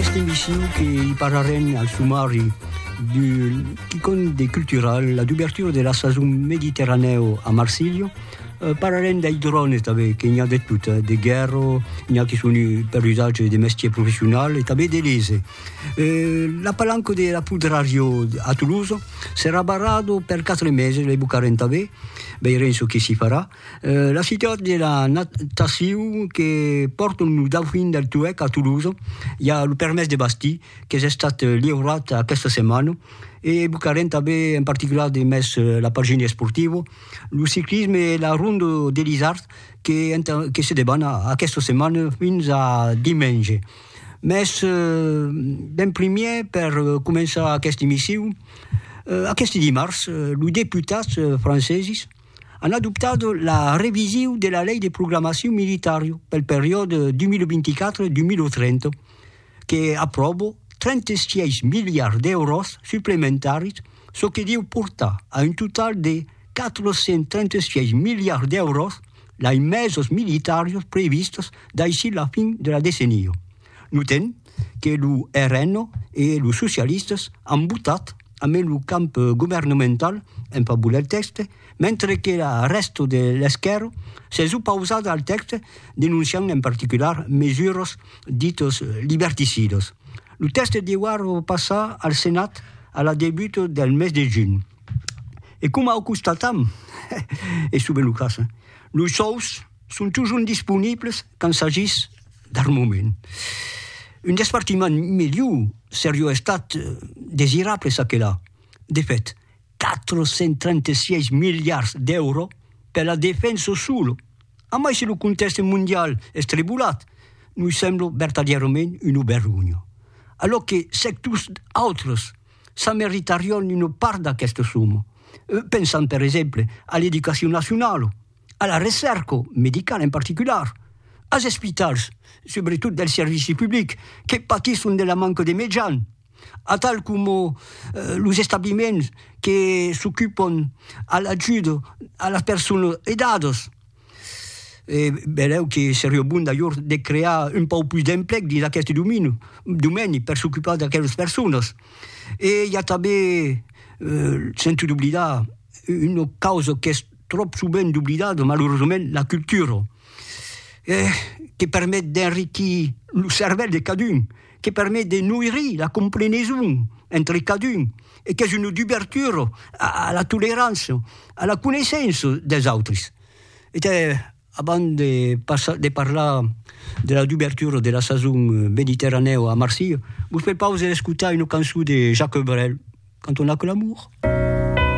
Este missiu que i parlarem al sumari d'un quicon de cultural, la d'ouverture de la sason mediterranèu a Marsilha, eh, parlarem dei drones tanben, que n'i a de tot, eh, de guèrra, n'i a que son per usatge de mestier professional e tanben de lese. Eh, la palanca de la Pudrario a Tolosa serà barrada per quatre meses, lei bocarem tanben, veirem çò que s'i farà. La ciutat de la natacion que pòrton lo Dauphin del Toueck a Toulouse, i a lo permés de bastir qu'es estat liurat aquesta setmana, e evocarem tanben en particular de mes la pagina esportiva, lo ciclisme e la Ronda de l'Isard que que se deban aquesta setmana fins a dimenge. Mes d'en primièr per començar aquesta emission, aqueste dimars los deputats franceses, an adoptat la revision de la Lei de Programacion Militària pel periòde 2024-2030, que apròva 36 miliards d'èuros suplementaris, çò que deu portar a un total de 436 miliards d'èuros d'aimesos militàrios previstos daicí la fin de la decenia. Notem que lo RN e los socialistas an votat ambe lo camp governemental en favor del tèxte, mentre que la rèsta de l'esquèrra s'es opausada al tèxte denonciant en particular mesuras ditas liberticidas. Lo tèxte deuar passar al Senat a la debuta del mes de junh. E coma o constatam, es sovent lo cas, los sòus son totjorn disponibles Quand s'agís d'armament, un despartiment miliu serió estat desirable çaquelà. De fèt, 436 miliards d'èuro per la defensa solo, amai si lo contèxte mondial es trebolat, nos sembla vertadièrament una vergonha, alòc que sectors autres s'ameritarion una part d'aquesta soma, pensam per exemple a l'educacion nacionala, a la recèrca medicala en particular, as espitals, subretot del servici public, que patisson de la manca de mejan, atal coma los establiments que s'ocupon a l'ajuda a las personas aidadas. E belèu que seriá bon d'ajor de crear un pauc pus d'emplec dins aqueste domini, domeni per s'ocupar d'aquelas personas. E i a tanben, sento d'oblidar, una causa qu'es tròp sovent oblidada, malauresament, la cultura, que permet d'enriquir lo cervèl de cadun, que permet de noirir la compreneson entre cadun e qu'es una dubertura a la tolerança, a la coneissença des autres. E te, abans de passar, de parlar de la dubertura de la sason mediterranèu a Marsilha, vos prepaus a escotar una cançon de Jacques Brel, canton Aquel amor.